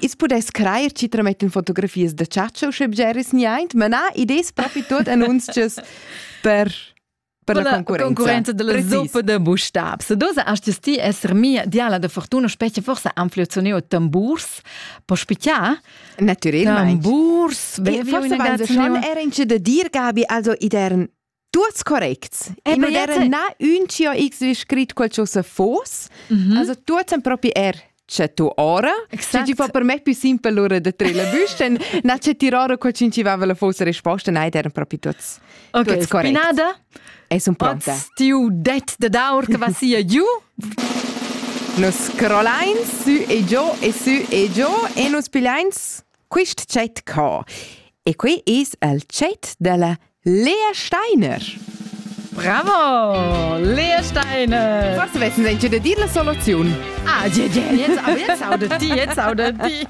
I's pudess crajer chi tramettan fotografias da chatscha usche bgeris niaint, ma na, id es propi tuot annunzchas per per la concurenza. concurenza della zuppa da bustab. Se dosa astes ti esser mia diala da fortuna specie forse anflezioneo tamburs po spicia? Naturelmeint. Tamburs, bevi forse schon era in de dir Gabi, also idern tuts corrects. E non era na un cio x vi scrit quel cho se fos. Also tuts en propri er c'è tu ora. Se ti fa per me più simpel l'ora de tre la busten, na c'è ti ora co cincivava la fosse risposta, nei erano proprio tutti okay, correct. Spinada? E sono pronta. Tiu det de daur che va sia giù. Nos scrollains su e giù e su e giù e nos pigliains Quist tschet ca. E qui es el tschet della Lea Steiner. Bravo! Lea Steiner! Forse vessen sie de dir la soluzione. Ah, ja, ja, jetzt, aber jetzt audet die, jetzt audet die.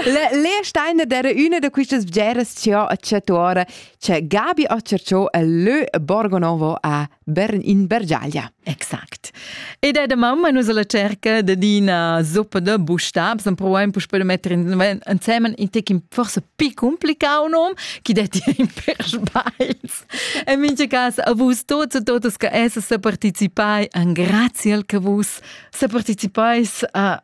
La Lea Steiner era una de quistas bgeras che ha acciatuora c'è Gabi Occercio e lö Borgonovo a Bern in Bergiaglia. Exakt. Ed è da mamma nus alla cerca de d'ina zoppa de bustabs, en provaim puspè de mettere insieme in tec forse più complicado nom, chi detti in per sbails. En mincha cas a vus tots e totas che esse se participai, an grazie al che vus se participais a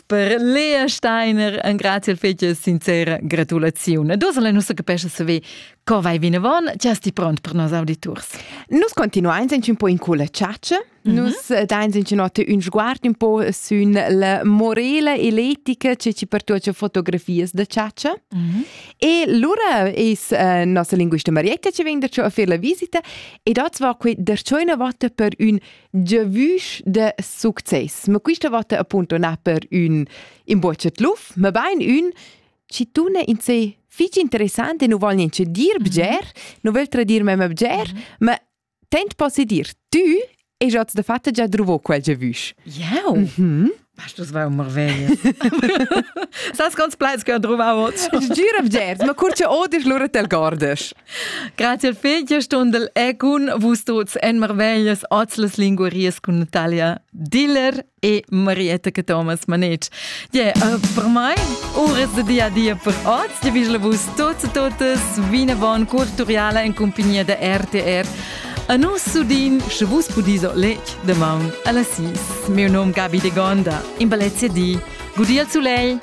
Per Lea Steiner ein grazie fetg sincera gratulaziun. Dus la nostra capescha saver co vai vinavon, ti sti pront per nos auditurs. Nus continuein sind un po in culla ciaccia. Mm -hmm. Nus eh, dain sind notte un sguard un po sün la morela eletica che ci pertuace fotografias da ciaccia. Mm -hmm. E lura is uh, nossa linguista Marietta ci vegn da a fer la visita e dat va que der una volta per un giavüsch de success. Ma quista vota appunto na per ün imbocet luf, ma bain ün ci tu ne in se fich interessant e nu vol niente dir bger, nu vil tradir mem bger, ma tent posse dir, tü e giats de fatta già druvo quel giavüsch. Jau. Mhm. Bastos vai un marveglia. Sas quants plaids che ho druvau oz? Gira vgers, ma cur che odis lura tel gordes. Grazie al figlia stundel e cun vus tuts en marveglias oz las linguaries cun Natalia Diller e Marietta che Thomas Manetsch. Yeah, uh, per mai, uras de dia a dia per oz. Ti vist vus tuts e totes vinavon cur turiala in compagnia da RTR A nus sudin, sche vus pudiso lec damaun alla sis. Mio nom Gabi de Gonda, in balezia di, gudi al sulei!